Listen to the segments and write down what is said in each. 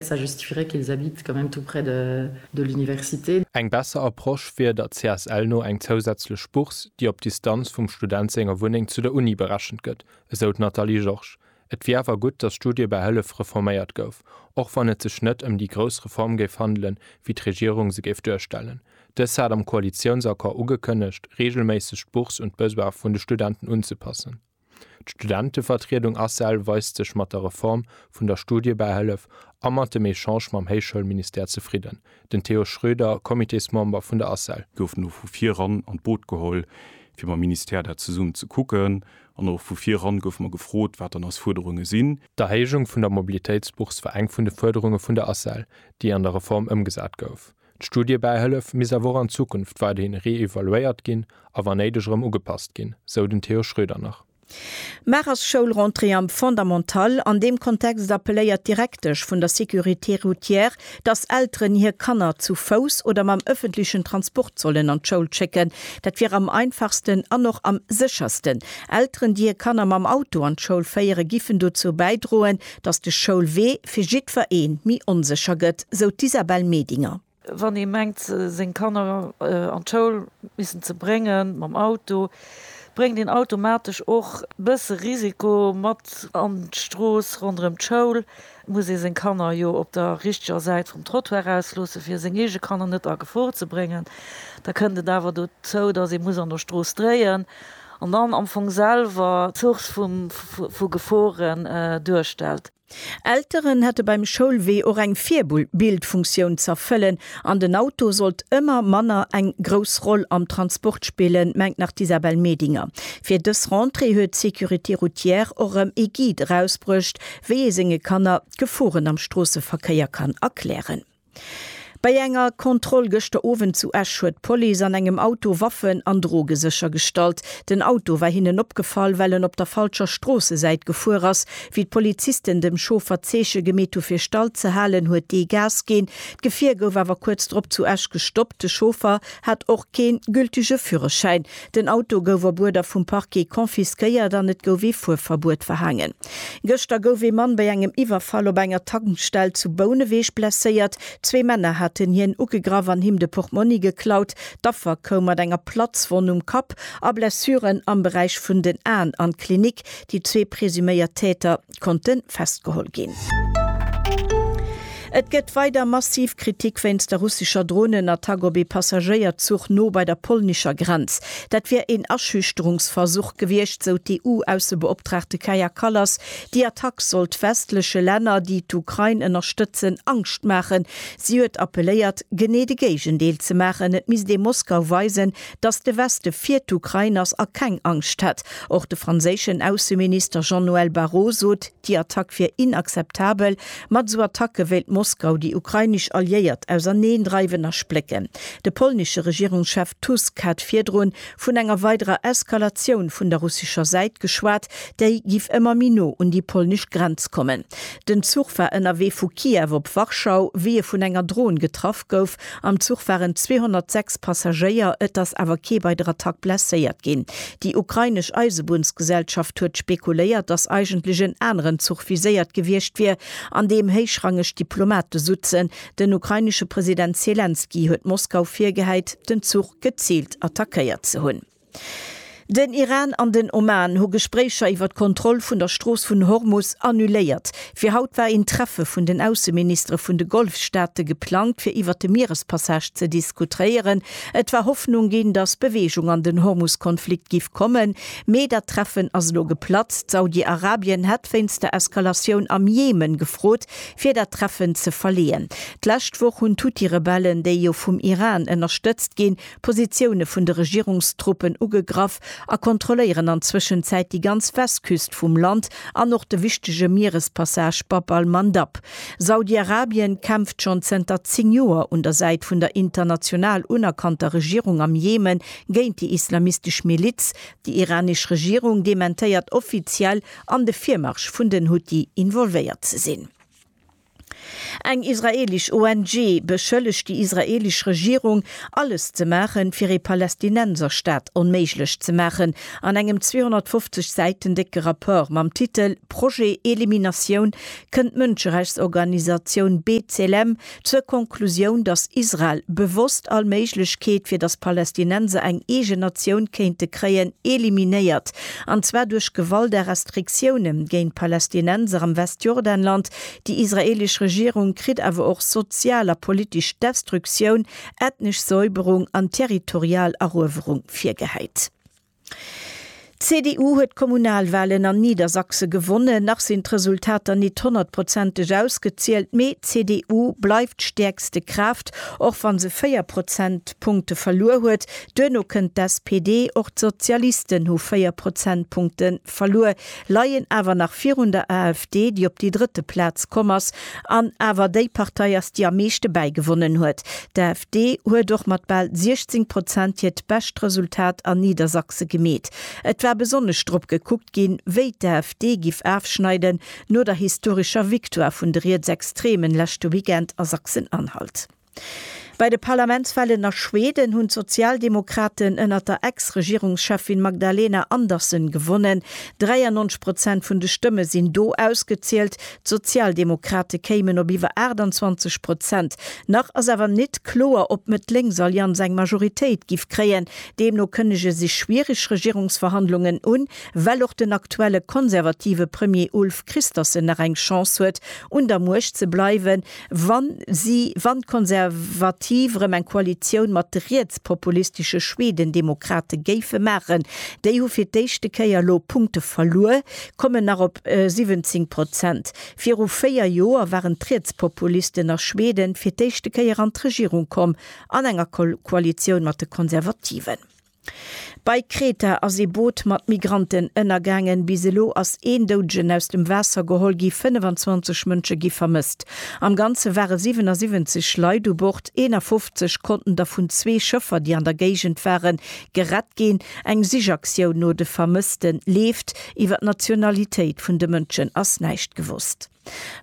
Ça justifierait qu'ils habitent quand même tout près de l'université. Eng besser Approche wier der CSL no eng zousätzlech Bourse, déi op d'Distanz vum Student senger Wunneng zu der Uni berechent gëtt, esou d'Nathalie Georges. Et wier awer gutt, datt d'Studiebähëllef reforméiert gouf, och wann et sech net ëm déi grouss Reform géif handelen, wéi d'Regierung se géif duerstellen. Dës hat am Koalitiounsaccord ugekënnegt, reegelméisseg d'Bourse un d'Besoine vun de Studenten unzepassen. D'Studentevertriedung Asel weist sech mat der Reform vun der Studiebähëllef a mat dem Echange mam Héichschoulministère zefridden, den Theo Schroeder, Comitésmember vun der Asel. Gouf elo vu vir ran an d'Boot geholl, fir mam Ministère dat zesummen ze kucken. An och vu vir ran goufe mer gefrot, wat dann eis Fuerderunge sinn. D'Erhéijung vun der Mobilitéitsbourse war eng vun de Fuerderunge vun der Asel, déi an der Reform ëmgesat gouf. D'Studiebäihëllef misst awer och an Zukunft weiderhin reevaluéiert ginn a wa néideg erëm ugepasst ginn, sou den Theo Schroeder nach. Mar ass Schoulrentrée am Fondamental. An deem Kontext appelléiert d'Direktesch vun der Sécurité routière, datt Elteren hir Kanner zu Fouss oder mam ëffentlechen Transport sollen an d'Schoul schécken. Dat wier am einfachsten an och am séchersten. Elteren, déi hir Kanner mam Auto an d'Schoul féieren, giffen dozou bäidroen, Dass de Schoulwee fir jiddwer ee méi onsécher gëtt, sou d'Isabelle Medinger. Wann ee mengt, seng Kanner an d'Schoul missen ze brénge mam Auto, bréngt een automatesch och e bësse Risiko mat an d'Strooss. Ronderëm d'Schoul muss ee seng Kanner jo op der richteger Säit vum Trottoir ausloossen, fir seng eege Kanner net a Gefor ze bréngen. Da kënnt et awer dozou, dass ee muss an der Strooss dréien. An dann am Fong selwer d'Source vu Geforen duerstellt. Elteren hätte beim Schoulwee och eng Virbildfunktioun z'erfëllen an den Auto sollt ëmmer manner eng grouss Roll am Transport spillen, mengt nach d'Isabelle Medinger. Fir dës Rentrée huet d'Sécurité Routière och erëm ee Guide erausbruecht, wéi ee senge Kanner d'Geforen am Stroosseverkéier kann erklären. Bei enger Kontroll gëschter Owend zu Esch huet d'Police an engem Auto Waffen an Droge séchergestallt. Den Auto war hinnen opgefall, well en op der falscher Stroossesäit gefuer ass. Wéi d'Polizisten dem Chauffer d'Zeeche gemeet hu fir stall ze halen, huet dee Gas ginn. D'Gefier gouf awer kuerz drop zu Esch gestoppt. De Chauffer hat och kee gültege Führerschäin. Den Auto gouf op Uerder vum Parquet confisquéiert an et gouf ee Fuerverbuet verhaangen. Gëschter gouf ee Mann bei engem Iwwerfall op enger Tankstell zu Bouneweg blesséiert. Zwee Männer haten hien ugegraff an him de Portmonni geklaut. D'Affer koum mat enger Platzwonn um Kapp a Blessuren am Beräich vun den Aen an d'Klinik. Déi zwee presuméiert Täter konnte festgeholl ginn. Et gëtt weider massiv Kritik wéinst der russescher Dronenattack op ee Passagéierzuch no bei der polnescher Grenz. Dat wier een Aschüchterungsversuch gewiescht, sou d'EU-Aussebeoptraagte Kaja Kallas. Déi Attack sollt westleche Länner, déi d'Ukrain ënnerstëtzen, Angscht maachen. Si huet appelléiert, genee de Géigendeel ze maachen, et misst ee Moskau weisen, datt de Weste fir d'Ukrain ass a keng Angscht hätt. Och de franséischen Ausseminister Jean-Noël Barrot sot, Déi Attack wier inakzeptabel. Mat esou Attacke wéilt Moskau déi ukrainesch Alliéiert auserneen dreiwen a splécken. De polnesche Regierungschef Tusk hat virdrun vun enger weiderer Eskalatioun vun der russescher Säit geschwat, déi giff ëmmer méi no un déi polnesch Grenz kommen. Den Zuch war ënnerwee vu Kiew op Warschau, wéi e vun enger Dron getraff gouf, Am Zuch waren 206 Passagéier, et ass awer kee bei der Attack blesséiert ginn. Déi ukrainesch Eisebunnsgesellschaft huet spekuléiert, datt eigentlech en aneren Zuch viséiert gewiescht wier, an deem héichrangeg Diplomate sutzen. Den ukrainesche President Selenskyj huet Moskau virgehäit, den Zuch geziilt attackéiert ze hunn. Den Iran an den Oman hu Gespréicher iwwer d'Kontroll vun der Strooss vun Hormus annuléiert. Fir haut war een Treffe vun den Ausseministere vun de Golfstaate geplangt, fir iwwer de Mierespassage ze diskutréieren. Et war Hoffnung ginn, datt Beweegung an den Hormus-Konflikt giff kommen, mee dat Treffen ass elo geplatzt. Saudi-Arabien hätt wéinst der Eskalatioun am Jemen gefrot, fir dat Treffen ze verleeën. D'lescht Woch hunn d'Huthi-Rebellen, déi jo vum Iran ënnerstëtzt ginn, Positioune vun de Regierungstruppen ugegraff a kontrolléieren an Zwëschenzäit déi ganz Westküst vum Land an och de wichtege Mierespassage Bab al-Mandab. Saudi-Arabien kämpft schonn zënter 10 Joer un der Säit vun der international unerkannter Regierung am Jemen géint déi islamistesch Miliz. Déi iranesch Regierung dementéiert offiziell, an de Virmarsch vun den Huthi involvéiert ze sinn. Eng israeelesch ONG beschëllegt déi israeelesch Regierung, alles ze maachen, fir ee Palästinenserstaat onméiglech ze maachen. An engem 250 Säiten décke Rapport mam Titel Projet Eliminatioun kënnt d'Mënscherechtsorganisatioun B'Tselem zur Konklusioun, datt Israel bewosst all Méiglechkeet, fir datt Palästinenser eng eegen Natioun kéinte kréien, eliminéiert, an zwar duerch Gewalt a Restriktiounen géint d'Palästinenser am Westjordanland, Déi israeelesch Regierung kritt awer och sozial a politesch Destruktioun, ethnesch Säuberung an territorial Eruewerung virgehäit. D'CDU huet d'Kommunalwalen an Niedersachse gewonnen. Nach sinn d'Resultater nit honnertprozenteg ausgezielt, mee d'CDU bleift d'stäerkste Kraaft, och wann se 4 Prozentpunkte verluer huet. Duerno kënnt d'SPD, och d'Sozialisten hu 4 Prozentpunkte verluer. leien awer nach virun der AfD, déi op déi drëtte Plaz komm ass an awer déi Partei ass, déi am meeschte bäigewonnen huet. D'AfD huet och mat bal 16 Prozent hiert bescht Resultat an Niedersachse gemeet. Et war besonnesch drop gekuckt ginn, wéi d'AfD giff afschneiden no der historescher Victoire vun de Rietsextremen leschte Weekend a Sachsen-Anhalt. Bei de Parlamentswahlen a Schweden hunn d'Sozialdemokraten ënnert der Ex-Regierungscheffin Magdalena Andersson gewonnen. 93 Prozent vun de Stëmme sinn do ausgezielt. D'Sozialdemokrate kéimen op iwwer 28 Prozent. Nach ass awer nit kloer, ob d'Mëtt-Lénks-Allianz eng Majoritéit giff kréien. Deemno kënnege sech schwiereg Regierungsverhandlungen un, well och den aktuelle konservative Premier Ulf Kristersson nach eng Chance huet, un der Muecht ze bleiwen. Wa si, wann d'Konservativ erëm eng Koalitioun mat de rietspopulistesche Schwedendemokrate géife maachen, déi hu fir d'éischte Kéier elo Punkte verluer, kommen nach op 17 Prozent. Viru véier Joer waren d'Rietspopulisten a Schweden fir d'éischte Kéier an d'Regierung komm, an enger Koalitioun mat de Konservativen. Bei Kreta ass ee Boot mat Migranten ënnergaangen. Bis elo ass een Doudegen aus dem Waasser geholl gi, 25 Mënsche gi vermësst. Am Ganze ware 77 Leit u Bord, 51 konnten der vun zwee Schëffer, déi an der Géigend waren, gerett ginn. Eng Sichaktioun no de Vermësste leeft. Iwwer d'Nationalitéit vun de Mënschen ass näischt gewosst.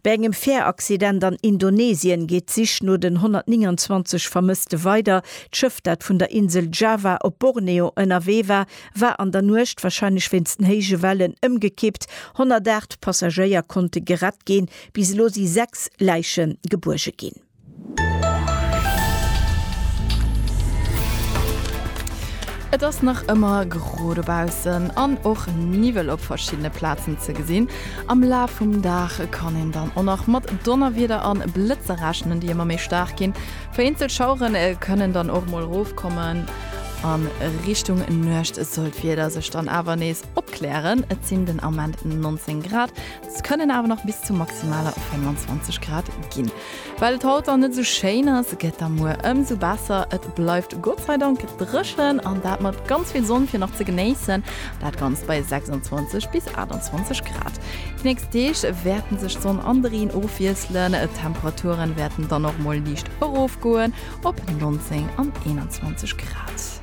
Bei engem Fäeraccident an Indonesien geet d'Sich no den 129 Vermësste weider. D'Schëff, dat vun der Insel Java op Borneo ënnerwee war, war an der Nuecht, warscheinlech wéinst den héije Wellen, ëmgekippt. 108 Passagéier konnte gerett ginn. Bis elo si sechs Läiche gebuerge ginn. Et ass nach ëmmer gro dobaussen an och Niwwel op verschiddene Plazen ze gesinn. Am Laf vum Dag kann een dann och nach mat Donnerwieder an Blëtzer rechnen, déi ëmmer méi staark ginn. Vereenzelt Schauere kënnen dann och mol erofkommen. A Richtung Nuecht soll d'Wieder sech dann awer nees opklären. Et sinn den Ament 19 Grad. Se kënnen awer nach bis zu maximaler 25 Grad ginn. Well et haut dann net esou schéin ass, gëtt da muer ëmsou besser. Et bleift Gott sei Dank dréchen an dat mat ganz vill Sonn fir nach ze genéissen. Dat Ganzt bei 26 bis 28 Grad. Déi nächst Deeg wäerten sech Sonn an de Reen ofwiesselen. D'Temperaturen wäerten dann och mol liicht erofgoen op 19 an 21 Grad.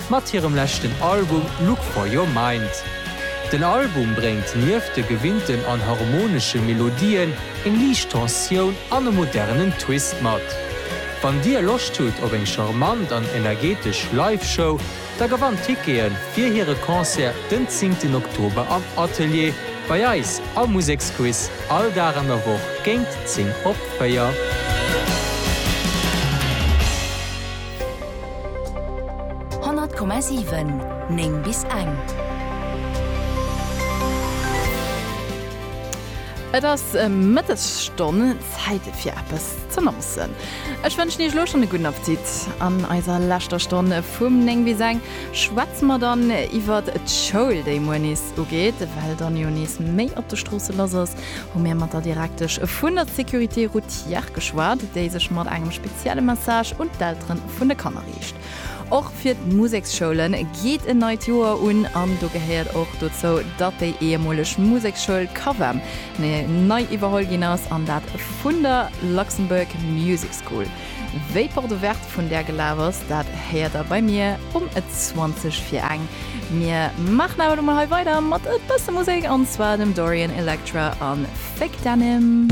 mat hirem leschten Album Look For Your Mind. Den Album bréngt nieft de gewinnten an harmonesche Melodien eng liicht Tensioun an e modernen Twist mat. Wann dir Loscht hutt op eng charmant an energetesch Live-Show, da gewannt Tickete fir hire Concert den zéngten Oktober am Atelier bei eis am Museksquiz all Dag an der Woch géint 10 op 4. 100,7 9 bis eng. Et ass Mëttesstonn, Zäit fir eppes z'annoncen. Ech wënschen Iech elo schonn e gudden Appetit. An eiser leschter Stonn vum 9 bis eng schwätze mer dann iwwert d'Schoul, déi muer nees ugeet, well dann jo nees méi op de Stroosse lass ass. hu mir mat der Direktesch vun der Sécurité routière geschwat, déi sech mat engem spezielle Message un d'Eltere vun de Kanner riicht. Och fir d'Museksschoule geet en neit Joer un an do gehéiert och dozou, datt déi ehemoleg Museksschoul Cavem nei iwwerholl ginn ass an dat vun der Luxembourg Music School. Wéi Porte Ouverte vun där gelaf ass, dat héiert der bei mir um 20 vir eng. Mir maachen awer lo mol hei weider mat e bësse Musek, an zwar dem Dorian Electra a Fake Denim.